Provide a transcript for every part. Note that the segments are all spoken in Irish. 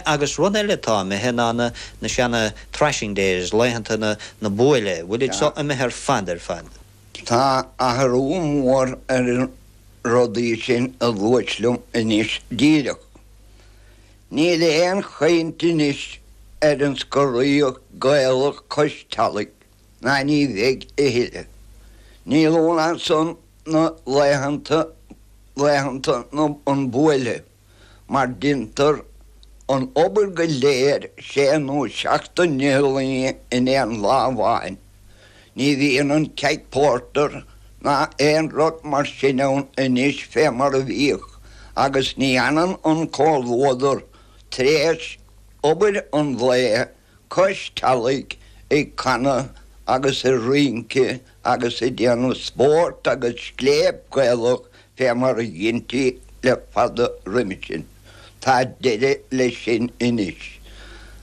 Agus rud eile atá imithe ná na, na seana thrashing days, laethanta na, na buaile, bhfuil iad so imithe ar fad, ar fad. Tá athrú mór ar an rudaí sin a luaigh tú liom anois díreach. Níl aon chaint anois ar an scoraíocht Gaelach cois teallaigh, ná ní bheidh a thuilleadh. Níl ann ach san na laethanta, laethanta na, an buaile. mar deintear an obair go léir sé nó seacht ndlí in aon lá amháin. Ní bhíonn an ceaig pórtair ná aon rud mar sin ann anois fé mar a bhíodh agus ní fhanann an comhluadar tar éis obair an lae cois teallaigh ag canadh agus ag rince agus ag déanamh spóirt agus scléip Ghaelach fé mar a dheintí le fada roimhe sin. Tá deireadh leis sin anois.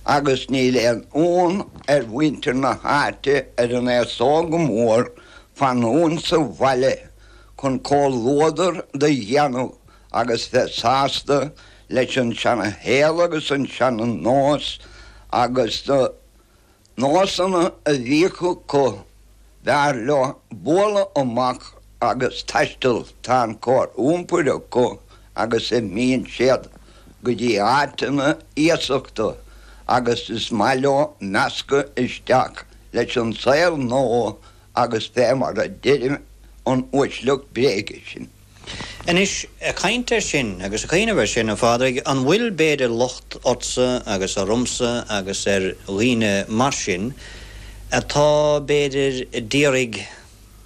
Agus níl aon fhonn ar mhuintir na háite ar an aos óg go mór fanúint sa bhaile chun comhluadar do dhéanamh agus bheith sásta leis an tseana-shaol agus an tseana-nós agus na nósanna a bhíodh acu, b'fhearr leo bualadh amach agus taisteal, tá an chóir iompair acu agus imíonn siad go dtí áiteanna iasachta agus is maith leo meascadh isteach leis an tsaol nua agus fé mar a deireadh an uaisleacht bréige sin. Anois, ag caint air sin agus ag cuimhneamh air sin, a Phádraig, an bhfuil, b'fhéidir, locht ortsa agus ormsa agus ar dhaoine mar sin atá, b'fhéidir, d'iarraidh,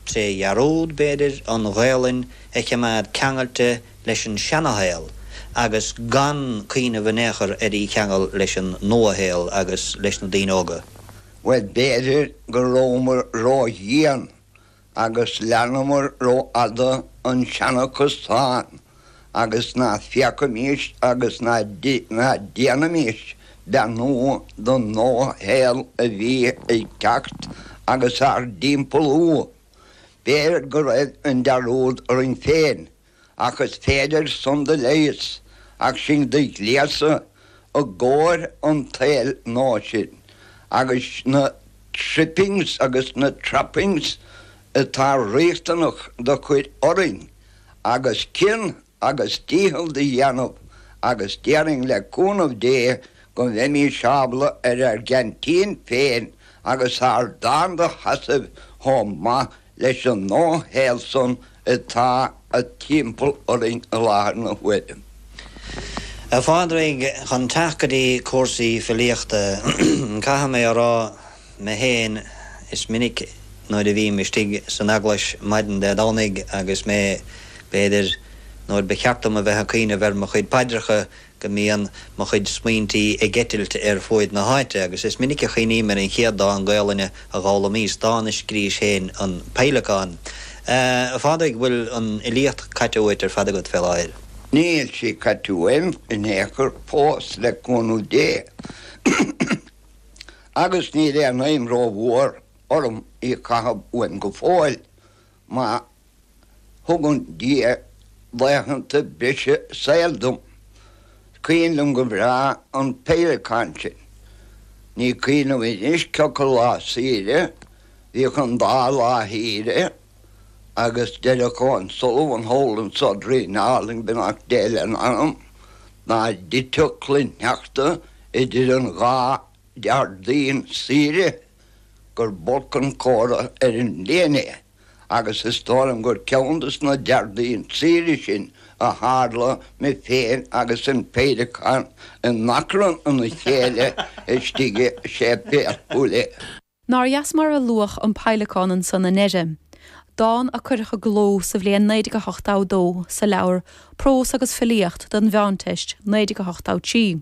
tré dhearúd, b'fhéidir, an Ghaelainn a chimeád ceangailte leis an seana-shaol agus gan cuimhneamh in aon chor ar í cheangal leis an nua-shaol agus leis na daoine óga? Bhuel, b'fhéidir go rabhamar ródhian Agus leanamar ró-fhada an seana-chosán, agus ná féachaimís agus ná déanaimís beannú don nua-shaol a bhí ag teacht agus ár dtimpeallú. B'fhéidir go raibh an dearúd orainn féin ach is féidir san do leigheas, ach sinn do ghléasadh i gcóir an tsaeil nua sin, agus na trippings agus na trappings atá riachtanach do chur orainn, agus cion agus dícheall do dhéanamh, agus déarfainn le cúnamh Dé go mbeimís ábla ar ár gceaintín féin agus ár dtáin do sheasamh chomh maith leis an dá shaol san atá timpeall orainn i láthair na huaire. A Phádraig, chun teacht go dtí cúrsaí filíochta, caithfidh mé a rá mé fhéin, is minic nuair a bhím istigh san eaglais maidin Dé Domhnaigh agus mé, b'fhéidir, nuair ba cheart dom a bheith ag cuimhneamh ar mo chuid paidreacha, go mbíonn mo chuid smaointí ag eitilt ar fuaid na háite, agus is minic a chuimhním ar an chéad dán Gaolainne a dh'fhoghlaimíos, dán a scrís féin, An Peidhleacán. A Phádraig, bhfuil an fhilíocht caite uait ar fad agat, fé láthair? Níl sí caite uaim in aon chor fós, le cúnamh Dé, agus níl aon fheidhm ró-mhór orm í a chaitheamh uaim go fóill. Má thugann Dia laethanta breise saoil dom, is cuimhin liom go breá an péileacán sin. Ní cuimhin liom anois cioca lá saoire bhíodh an dá lá shaoire agus deireadh Con Sullivan thall insa Doirín Álainn, beannacht Dé lena anam, dá dtiteadh cloichshneachta idir an dhá Déardaoin saoire. gur b'olc an comhartha ar an mbliain é agus is dóigh liom gur ceann des na Déardaoin saoire sin a tharla, mé féin agus an péileacán in achrann ina chéile istigh i séipéal Chúil Aodha. Nár dheas mar a luadh an Peidhleacán ansan i ndeireadh dán a cuireadh i gcló sa bhliain 1982 sa leabhar Prós agus Filíocht don Mheánteist, 1983.